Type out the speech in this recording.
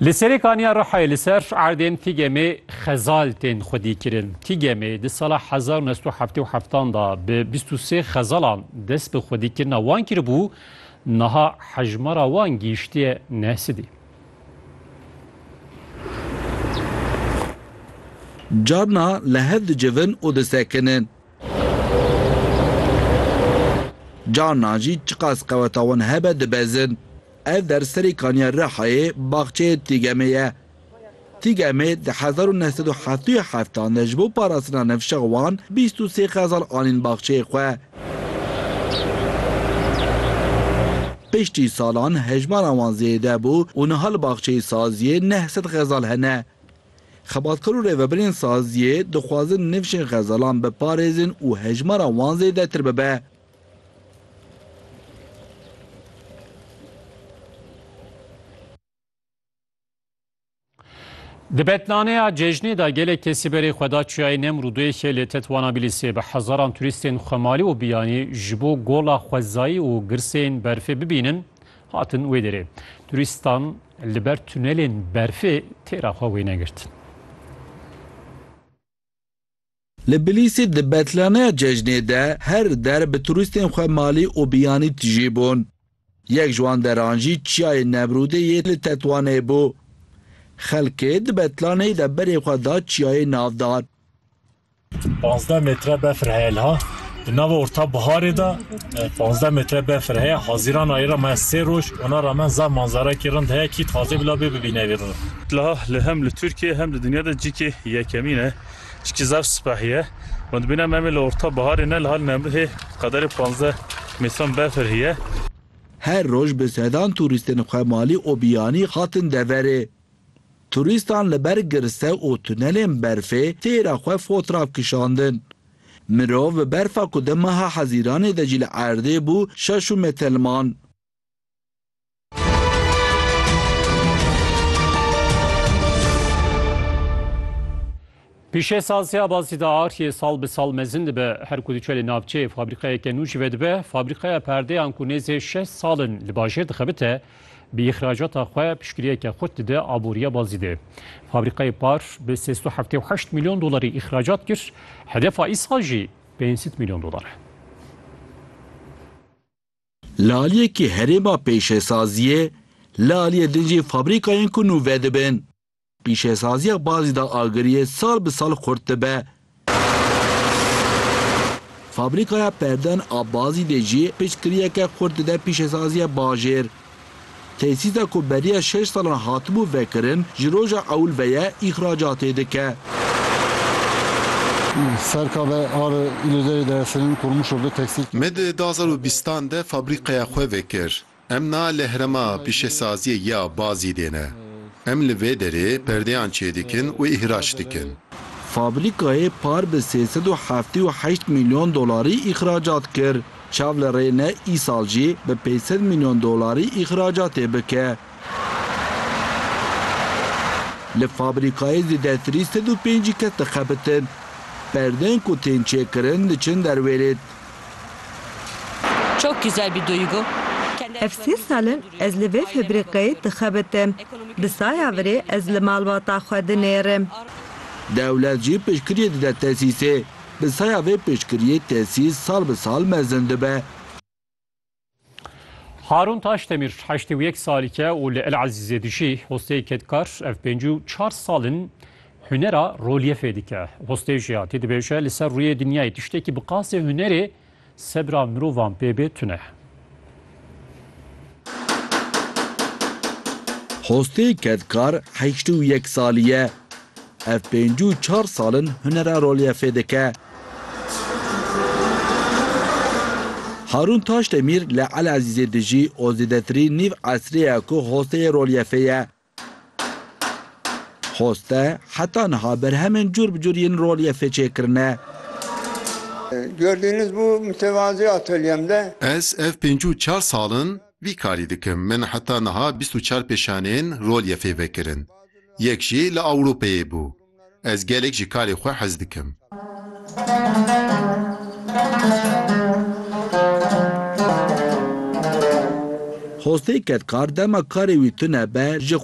Li Serê Kaniya Rihayê li ser erdên TGM'ê xezal tên xwedîkirin. TGM'ê di sala hezar û neh sed û heftê û heft an da bi bîst û sê xezalan dest bi xwedîkirina wan kiribû, niha hejmara wan gihîştiye neh sidî. Carna li hev dicivin û disekinin. Carna jî çiqas qeweta wan hebe dibezin. Ev der serê kaniya Rihayê baxçeyê Tîgemê ye. Tîgemê di hezar û neh sed û heftê û heft an de ji bo parastina nifşex wan bîst û sê xezal anîn baxçeyê xwe. Piştî salan hejmara wan zêde bû û niha li baxçeyê saziyê neh sed xezal hene. Xebatkar û rêvebirên saziyê dixwazin nifşên xezalan biparêzin û hejmara wan zêdetir bibe. Di betnaneya cejnê de gelek kesî berê xwe da çiyayê Nemrûdê yê lê tetwana Bîlîsê bi hezaran turîstên xwemalî û biyanî ji bo gola xwezayî û girsên berfê bibînin hatin wê derê. Turîstan li ber tunelên berfê têra xwe wêne girtin. Li Bilîsî di betlaneya cejnê de her der bi turîstên xwe malî û biyanî tijî bûn. Yek ji wan deran jî Çiyayê Nemrûdê yê li Tetwanê bû. Xelkê di betlaneyê de berê xwe da çiyayê navdar. Panzdeh metre befir heye liha. Di nava orta biharê de panzdeh metre befir heye. Hazîran ayê re me sê roj ona rame zaf manzarekî rind heye kî taze bila bê bibîne vê roj. Liha li hem li Tirkiye hem li dinya de cikê yekemîn e. Çikî zaf sipehî ye. Hûndibîne me mê li orta biharê ne li hal Nemrûdê qederê panzdeh mîtron befir hîye. Her roj bi sedan turîstên xwe malî û biyanî hatin deverê. Turîstan li ber girse û tunelên berfê têra xwe fotrav kişandin. Mirov bi berfa ku di meha hezîranê de jî li erdê bû şaş û metelman. Pişê sazya bazî de artiyê sal bi sal mezin dibe. Her ku diçe li navçeyê fabrîqeyeke nû jî vedibe. Fabrîqeya perdeyan ku nêzê şeş sal in li bajêr dixebite, bi îxracata xwe piştgiriyeke xurt dide aboriya bazî de. Fabrîqeyê par bi sêz û heftê û heşt milyon dolarî îxracat kir, hedefa îsal jî pênc sed milyon dolar e. Li aliyekî herêma pêşesaziyê, li aliyê din jî fabrîkayên ku nû vedibin. Pîşesaziya bazî da agiriyê sal bi sal xurt dibe. Fabrîkaya perdeyan a bazî dê jî piçkiriyeke xurt dide pîşesaziya bajêr. Tesîsa ku beriya şeş salan hatibû vekirin ji roja ewil ve ye îxracatê dike. Serka ve ar Îlozerê Deresinin Kurmuşo bi teksîl. Me di du hezar û bîst an de fabrîkaya xwe vekir. Em na li herema pîşesaziyê ya Bazî dê ne. Em li vê derê perdeyan çêdikin û îhraç dikin. Fabrîkayê par bi sê sed û heftê û heşt mîlyon dolarî îxracat kir. Çav li rê ne îsal jî bi pênc sed milyon dolarî îxracatê bike. Li fabrîkayê zêdetirî sed û pêncî kes dixebitin. Perdeyên ku tên çêkirin diçin derwêrêt. Ev sê sal in ez li vê febrîkayê dixebitim. Bi saya virê ez li malbata xwe dinêrim. Dewlet jî piştgiriyê dide tesîsê. Bi saya vê piştgiriyê tesîl sal bi sal mezin dibe. Harûn Taşdemîr heştê û yek salîk e û li El Ezîzê dijî. Hosteyê kedkar ev pêncî û çar sal in hunera rolyefê dike. Hostê jiyatî dibêje li ser rûyê dinyayê tiştekî bi qasê hunerê, Sebra mirovan pê bê tune. Hostê kedkar heşt û yek salî ye. Ev pêncî û çar sal in hunera rolyefê dike. Harûn Taşdemîr li Elezîzê dijî û zêdetirî nîv esrê ye ku hosteyê rolyefê ye. Xoste, heta niha berhemên cûr bi cûr yên rolyefê çêkirine. Gördüğünüz bu mütevazi atölyem de. Ez ev pêncî û çar sal in vî karî dikim. Min heta niha bîst û çar pêşaneyên rolyefê vekirin. Yek jî li Ewropeyê bû. Ez gelek ji karê xwe hez dikim. Xostê kedkar dema karê wî tune be ji.